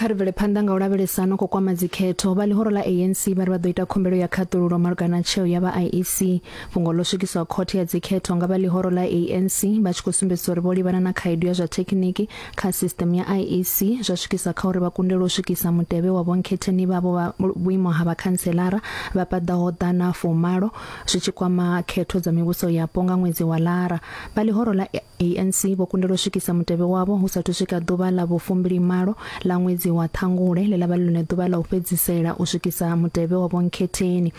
kha ri bvele phanḓa nga u lavhelesa no khou kwama dzikhetho vha ḽihoro ḽa anc vha ri vha ḓo ita khumbelo ya khaṱululo malugana tsheo ya vha iec fhungo ḽo swikiswa khothe ya dzikhetho nga vha ḽihoro ḽa anc vha tshi khou sumbedzisa uri vho livhana na khaedu ya zwa thekhiniki kha sisṱeme ya IEC zwa swikisa kha uri vha kundelwe u swikisa mutevhe wa vhonkhetheni vhavho vha vhuimo ha vhakhanselara vha paḓaho ḓana fumalo zwi tshi kwama khetho dza mivhuso yapo nga ṅwedzi wa Lara. Vha ḽihoro ḽa ANC vho kundelwa u swikisa mutevhe wavho hu sathu swika ḓuvha ḽa vhufumbilimalo ḽa ṅwedzi wa Ṱhangule ḽe ḽa vha ḽone ḓuvha ḽa u fhedzisela u swikisa mutevhe wa vhonkhetheni.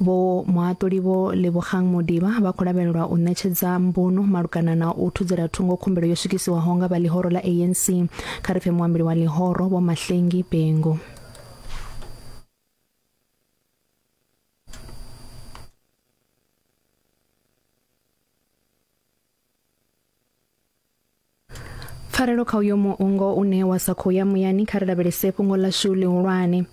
Vho Muhaṱuli Vho Lebogang Modiba vha khou lavhelelwa u ṋetshedza mbuno malugana na u thudzela thungo khumbelo yo swikisiwaho nga vha ḽihoro ḽa ANC. Kha ri pfe muambeli wa ḽihoro Vho Mahlengi Bengo. pfarelo kha uyo muungo une wa sa khou ya muyani kha ri lavhelese fhungo ḽashu ḽihulwane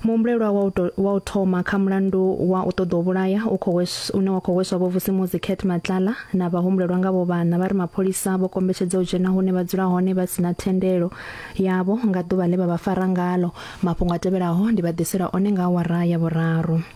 muhumbulelwa wa u to- wa u thoma kha mulandu wa u ṱoḓa u vhulaya u khou wes- une wa khou hweswa vhovusimuzi cat matlala na vhahumbulelwa nga vho vhana vha ri mapholisa vho kombetshedza u dzhena hune vha dzula hone vha si na thendelo yavho nga ḓuvha ḽe vha vha fara ngalo mafhungo a tevhelaho ndi vha ḓisela one nga awara ya vhuraru